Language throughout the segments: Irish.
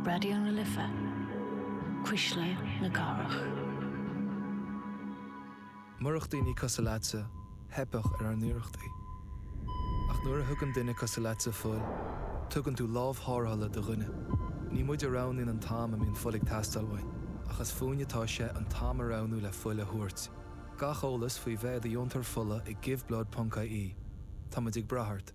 Raidió na Life, Cuisle na Cathrach. Murach daoine cosúil leatsa, theipfeadh ar ár n-iarrachtaí. Ach nuair a thugann duine cosúil leatsa fuil, tugann tú lámh tharrthála do dhuine. Ní muid a roghnaíonn an t-am a mbíonn fuil ag teastáil uainn, ach is fúinn atá sé an t-am a roghnú le fuil a thabhairt. Gach eolas faoi bheith i do dheontóir fola ag Give Blood ponc ie Tá muid ag brath ort.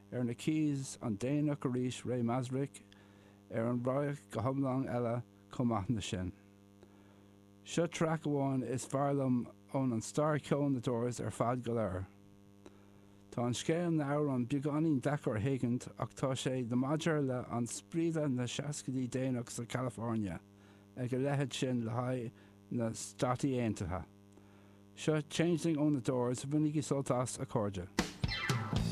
Ar na Keys, an déanach arís, Ray Manzarek ar an radharc go hiomlán eile chomh maith ná sin. Seo traic amháin is fearr liom ón an stair ceoil na Doors ar fad go léir. Tá an scéal na amhrán beagáinín deacair a thuigint ach tá sé the maidir le an spiorad na seascaidí déanach sa California ag a leithead sin le haghaidh na Stáit Aontaithe. Seo Changeling ó na Doors, bainigí sult as, a chairde.